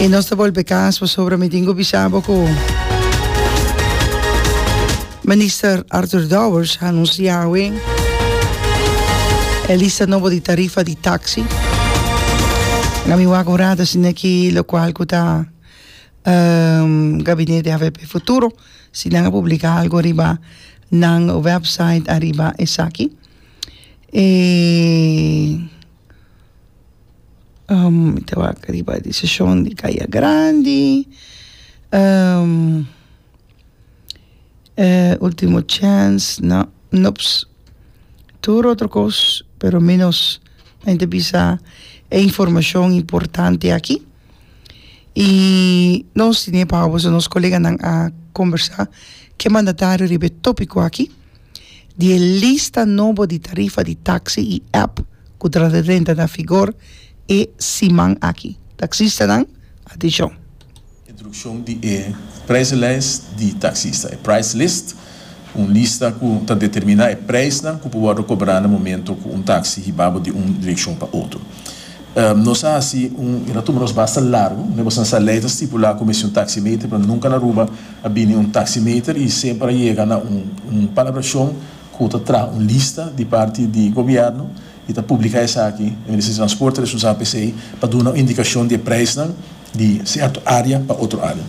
Y nos ta bolbe cas pasobra mi tin cu bisabo cu Minister Arthur Dowers a anuncia awe e lista nobo di tarifa di taxi. Na mi wak un rato asina aki lo cual cu ta um, Gabinete AVP Futuro, si nan a publica algo riba Nan website ariba esaki e mi ta wak riba di seshon di Kaya Grandi ultimo chèns no nops tur otro kos pero menos a yenta bisa e informashon importante aki. y nos tin e power so nos coleganan a conversa ke mandatario riba e topico aki di e lista nobo di tarifa di taxi y app cu ta renta na figor e siman aki taxistanan atencion. Introduccion di e prijslijst di taxista. E prijslist. Un lista ku ta determiná e preisnan ku por wòrdu kobrá na momentu ku un taksi hibá bo di un direkshon pa otro. Nos a hasi un. E ta tuma nos basta largu. Ne'e bosnan sa lei ta stipulá ku mester un taksimeter, pero nunka na Aruba a bini un taksimeter i semper a yega na un palabrashon ku ta traha un lista di parti di gobièrnu i ta publiká esaki. E Ministerio di Transporte ta responsabel pa esei pa duna un indikashon di e preisnan di sèrto área pa otro área.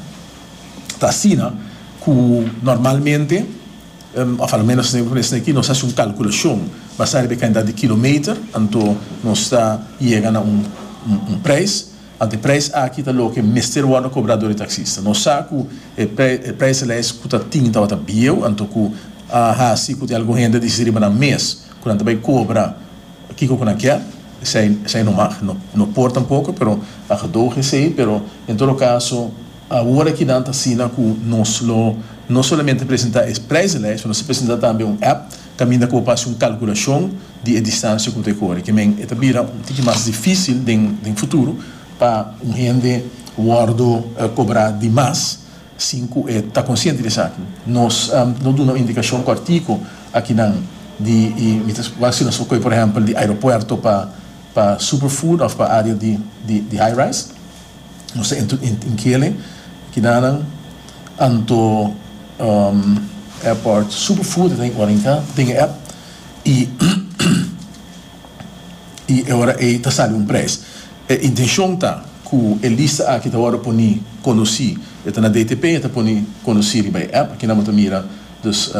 Ta asina ku normalmente, òf alomenos esei aki, nos hasi un kalkulashon basá riba e kantidat di kilometer, anto nos ta yega na un preis, anto e preis aki ta loke mester wòrdu kobrá dor e taksista. Nos sa ku e preislijst ku ta tin tabata bieu, anto ku a hasi ku tin algun hende a disi riba nan mes, Cu nan ta bay cobra kico cu nan kier, esey, esey no mag, no, no por tampoco, pero a gedoge esey, pero en todo caso awor aki nan ta asina cu nos lo no solamente presenta e prijzenlijst, nos ta presenta tambe un app caminda cu bo por haci un calculacion di e distancia cu bo ta e cori, que men e ta bira un tiki mas dificil den, den futuro pa un hende wordo cobra di mas Sin cu e ta consciente di esaki, nos lo duna un indicacion cortico akinan di y mi ta wou hasi nos ocoe, por ehempel, di aeropuerto pa superfood of pa area di high rise. Nos ta inkele kinanan anto airport superfood e ta den ora inka den e app y e ora ey ta sali un prijs. E intencion ta cu e lista aki ta wordo poni conoci. E ta na DTP y e ta poni conoci riba e app. Aki nan bo ta mira dus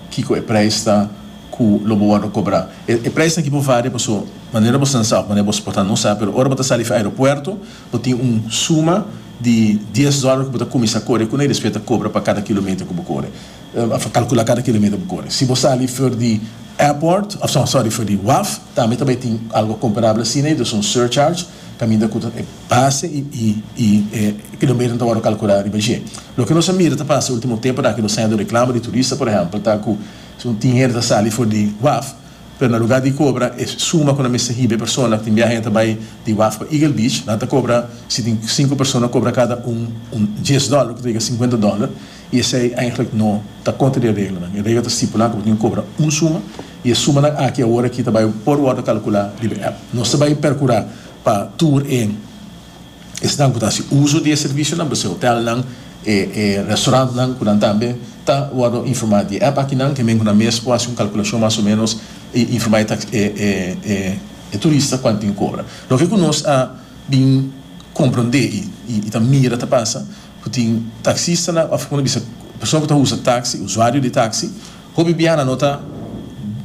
kico e prijs ta cu lo bo wordo cobra. E prijsnan aki bo varia paso manera bo slansa of manera bo sporta no sa. Pero ora bo ta sali fi aeropuerto bo tin un suma di dies dollar cu bo ta cuminsa core cun'e y despues e ta cobra pa cada kilometer cu bo core. A fo calcula cada kilometer bo core. Si bo sali for di airport, of no, sorry, for di waf, tambe ta bai tin algo comparable asina, y dus un surcharge, caminda cu ta e base y e kilometer ta worde calcula riba dje. Loke nos a mira ta pasa ultimo tempo na aki nos ta hende un reclamo di turista, por ehempel, ta cu tin hende ta sali for di waf, pero na lugar di cobra e suma cu nan mester hiba e persona, tin biaha hende ta bai di waf pa Eagle Beach, nan ta cobra, si tin cinco persona, cobra cada un un dies dollar, loke ta yega cincuenta dollar. i esei eindelijk no ta kontra di e reglanan. E regla ta stipulá ku bo tin ku kobra un suma, i e sumanan aki awor aki ta bai por wòrdu kalkulá riba e app. Nos ta bai perkurá pa tur e esnan ku ta hasi uso di e servisionan, p'esei hotelnan, e e restaurantnan ku nan tambe ta wòrdu informá di e app akinan, hemen ku nan mes por hasi un kalkulashon mas o ménos i informá e tax e e e e turista kuantu tin ku kobra. Loke ku nos a bin komprondé i ta mira ta pasa. Ku tin taksistanan òf kòmo no bisa persona ku ta usa taksi, usuario di taksi, hopi biaha nan no ta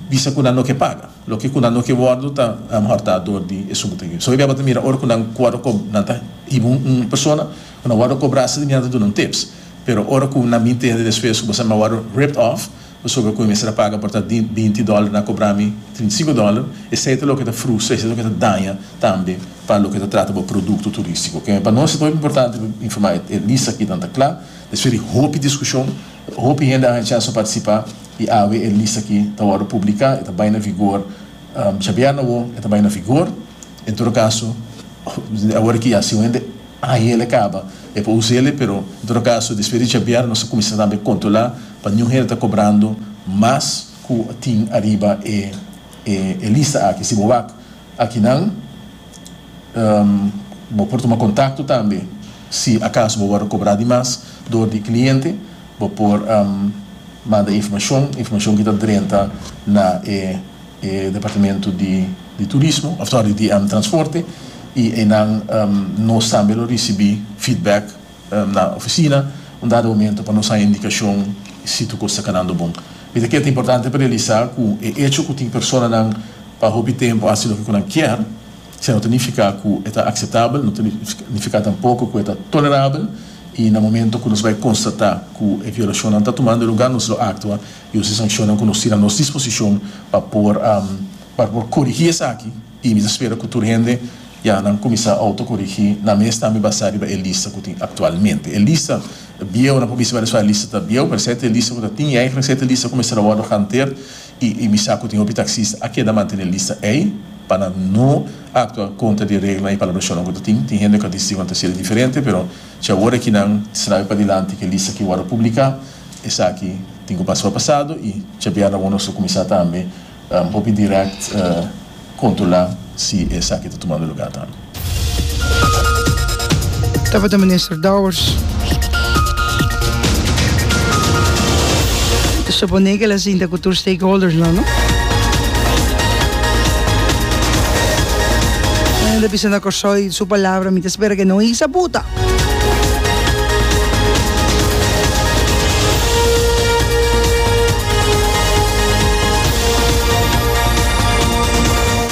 bisa ku nan no ke paga. Loke ku nan no ke wòrdu ta alomehor ta dor di esun ku ta hib'é. Esei bèba ta mira ora ku nan wòrdu kob, nan ta hiba un persona ku nan wòrdu kobrá, asina nan ta duna un tips. Pero ora ku nan bin tende despues ku bo sa nan wòrdu ripped off, pasobra cu e mester a paga por ta binti dollar na cobra mi trinta y cinco dollar, esey ta loke ta frustra, esey ta loke ta daña tambe pa loke ta trata bo producto turistico. Ok, pa nos e ta hopi importante pa informa e lista aki tan ta cla, despues di hopi discusion, hopi hende a haña chance pa participa y awe e lista aki ta wordo publica, e ta bay na vigor djabièrna awo, e ta bay na vigor, en todo caso, awor aki ya si un hende. Ahiele caba e pa Uziele, pero en todo caso despues di djabiar nos a cuminsa tambe controla pa niun hende ta cobrando mas cu tin ariba e lista aki. Si bo wak akinan bo por tuma contacto tambe si acaso bo wordo cobra di mas door di e cliente bo por manda informacion, informacion ki ta drenta na e. E departamento di di turismo, of sorry, di transporte y eynan nos tambe lo ricibi feedback na oficina un dado momento pa nos haya indicacion si tur cos ta canando bon. Mi ta kere ta importante pa realisa cu e hecho cu tin personanan pa hopi tempo haci loke cu nan kier sino ta nifica cu e ta aceptabel, no ta nifica tampoco cu e ta tolerabel y na momento cu nos bay constata cu e violacionnan ta tumando lugar nos lo actua i un sessionnan ku nos tin anos disposishon pa por pa por korigí esaki i mi ta spera ku tur hende ya nan kuminsá outokorigí nan mes tambe basá riba e lista ku tin aktualmente e lista bieu nan por bisa wèreso e lista ta bieu pero e sete lista ku ta tin ei e sete lista ku mester a wòrdu hanter i i mi sa ku tin hopi taksista a keda mantené lista ei pa nan no aktua kontra di e reglanan i palabrashonnan ku ta tin tin hende ku a disi ku nan ta hasié diferente pero cha wor e kinan trabe padilanti ku e lista ki wòrdu publiká. Esaki tin ku pasá pasado i djabièrna bo nos lo kuminsá tambe hopi dirèkt kontrolá si esaki ta tumando lugá tambe. Tabata minister Dowers ta suponé ku el a sinta ku tur stakeholdersnan no? Nan a bisa na Kòrsou i su palabra mi ta spera ku e no hisa buta.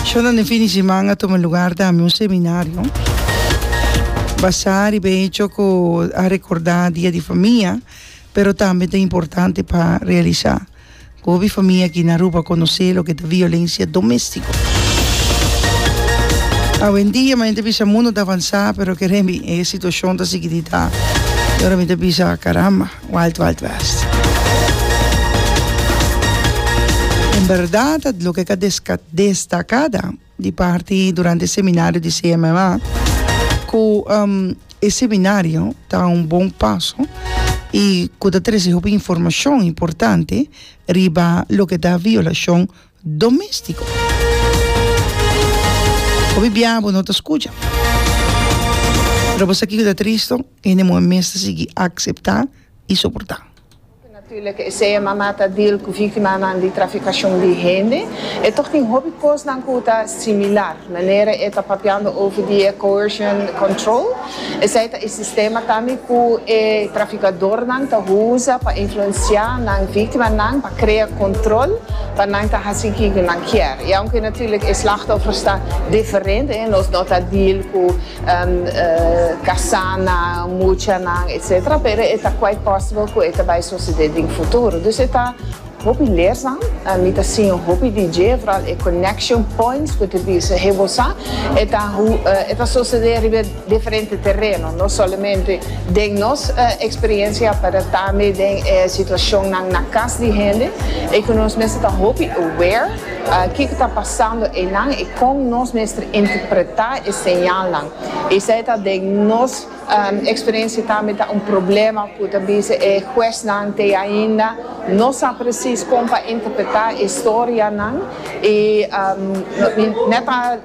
Shonda den fin di semana tuma lugar ta mi un seminario basá riba e hecho ku a rekordá Dia di Famia pero tambe ta importante pa realisá. Gobi famia aki na Aruba conoce loke ta violencia domestico. Awendia mi ta bisa mundo ta avansa pero keremi e situacion ta sigui di ta y ora mi ta bisa caramba wild wild west. En berdad loke ka destacada. di parti durante e seminario di CMMA ku e seminario ta un bon paso i ku ta trese hopi informashon importante riba loke ta violashon domestiko. Hopi bia bo no ta skucha. Pero bo sa kiko ta tristo? Hende muhé mes ta sigui akseptá i soportá. Hopi natúrlik esei mama ta deal ku víktimanan di trafikashon di hende. E tòg tin hopi kosnan ku ta similar, manera e ta papiando over di e coercion control. Esei ta e sistema tambe ku e trafikadornan ta usa pa influensiá nan víktimanan pa krea kòntròl pa nan ta hasi kiko nan kier. I aunke natúrlik e slachtòfers ta diferente, nos no ta deal ku. kasá nan, mucha nan, etc. Pero e ta quite possible ku e ta bai sosede den futuro. Dus e ta hopi lesnan. Mi ta siña hopi di dje, foral e connection points ku ta bisa hebo sa. E ta e ta sosede riba diferente tereno, no solamente den nos experiencia, pero tambe den e situacionnan na kas di hende, ei ku nos mes ta hopi aware. Kiko ta pasando eynan y con nos mester interpreta e señalnan. Esey ta den nos experiencia tambe ta un problema cu ta biza e huesnan te ainda no sa precies con pa interpreta e historianan y mi net a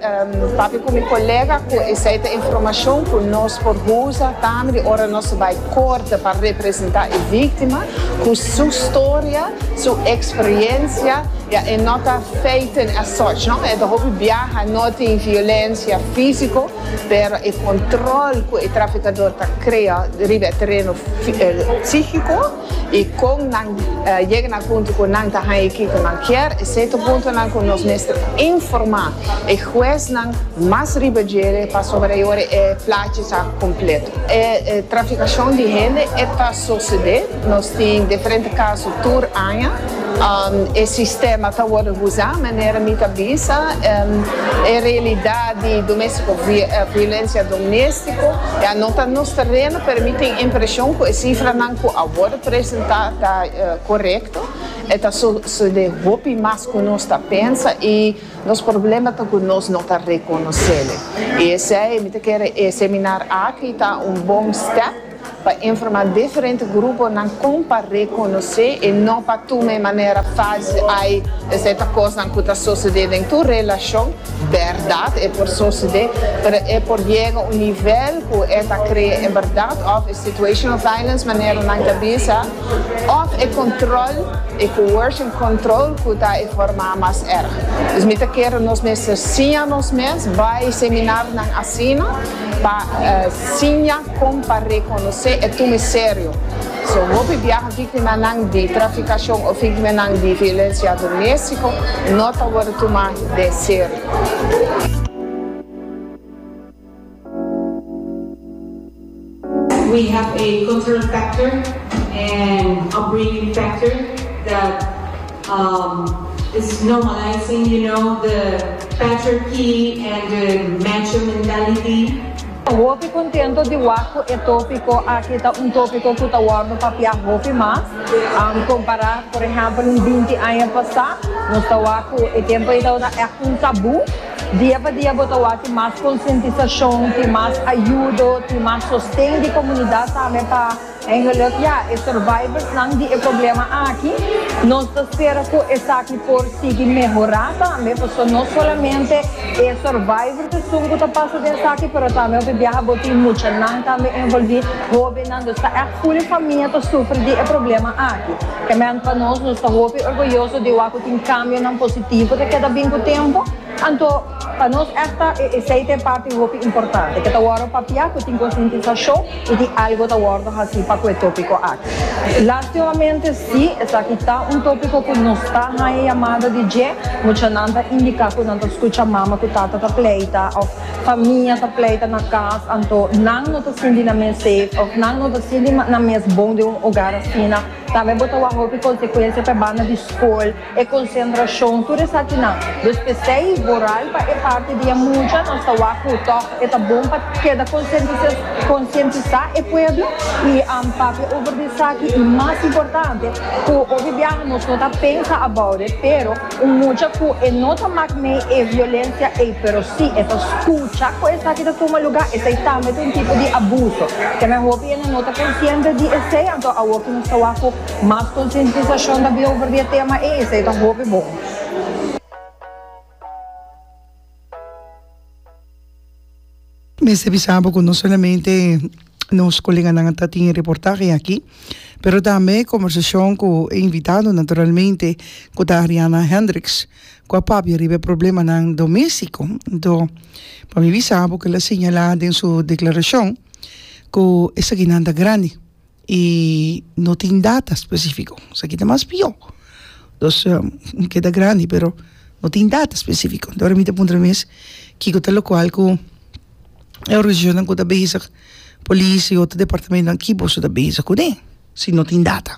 papia cu mi colega cu esey ta informacion cu nos por usa tambe di ora nos ta bay corte pa representa e victima cu su storia, su experiencia. Ya e no ta feiten asoch no, e ta hopi biaha, no tin violencia fisico, pero e control cu e traficador ta crea riba e tereno psihico y con nan yega na punto cu nan ta haya kico nan kier, esey ta puntonan cu nos mester informa e huesnan mas riba djere pasobra e ora e plachi sa completo. E traficacion di hende e ta socede, nos tin diferente caso tur aña. E sistema ta worde huza manera mi ta bisa e realidad di domestico violencia domestico ya no ta nos tereno pero mi tin impresion cu e cifranan cu a worde presenta ta corecto e ta sucede hopi mas cu nos ta pensa y nos problema ta cu nos no ta reconocele y esey mi ta kere e seminar aki ta un bon step Pa informa diferente gruponan kon pa rekonosé e no pa tuma e manera fasil ai esei ta kosnan ku ta sosede den tur relashon, bèrdat e por sosede pero e por yega un nivel ku e ta krea e bèrdat òf e situational violence manera nan ta bisa òf e kontròl e coercion control ku ta e forma mas èrg. Dus mi ta kere nos mester siña nos mes bai seminarnan asina pa siña. Kon pa rekonosé e tume serio? So hopi biaha viktimanan di trafikashon o viktimanan di violensia doméstiko no ta wòrdu tumá den serio. We have a cultural factor and upbringing factor that umm is normalizing you know the patriarchy and the macho mentality. Hopi contento di wak cu e topico aki ta un topico cu ta wordo papia hopi mas, compara por ehempel un binti aña pasa, nos ta wak cu e tempo ey tabata echt un tabu, dia pa dia bo ta wak tin mas concientisacion, tin mas ayudo, tin mas sosten di comunidad tambe pa. En geluk ya e survivors nan di e problema aki. Nos ta spera cu esaki por sigui mehora tambe, pasobra no solamente e survivors esun cu ta pasa den esaki, pero tambe hopi biaha bo tin muchanan tambe envolvi, hobennan, dus ta echt full e famia ta sufri di e problema aki. Kement pa nos, nos ta hopi orgulloso di wak cu tin cambionan positivo ta keda bin cu tempo. Anto, pa nos èsta e eseite parti hopi importante. Ke ta wòrdu papia ku tin konsientisashon i di algu ta wòrdu hasi pa ku e tópiko aki. Lastimamente si esaki ta un tópiko ku nos ta haña yamada di dje, muchanan ta indiká ku nan ta skucha mama ku tata ta pleita òf famia ta pleita na kas, anto nan no ta sinti nan mes safe òf nan no ta sinti nan mes bon den un ogar asina. Tambe bo ta wak hopi konsekuensia pa e banda di skol. E konsentrashon, tur esaki nan. Nos p'esei voral pa e parti di e mucha, nos ta wak ku tòg e ta bon pa keda konsientisá e pueblo i papia over di esaki i mas importante ku obi biaha nos no ta pensa about it pero un mucha ku e no ta mak mei e violensia ei pero si e ta skucha ku esaki ta tuma lugá esei tambe ta un tipo di abuso. Kende hopi enda no ta konsiente di esei anto awor ku nos ta wak ku Mas konsientisashon ta bihober di e tema ei, esei ta hopi bon. Mester bisa bo ku no solamente nos koleganan ta tin e reportahe aki, pero tambe kombersashon ku e invitado naturalmente ku ta Ariana Hendricks, ku a papia riba e problemanan doméstiko. Anto, pa mi bisa bo ku el a señalá den su deklarashon ku esakinan ta grandi. i no tin data specifico esaki ta mas pio dos keda grandi pero no tin data specifico enton ahora mi ta puntra mi mes kiko ta locual cu e organisacionnan cu ta bezig policia y otro departamentonan ki boso ta bezig cune si no tin data.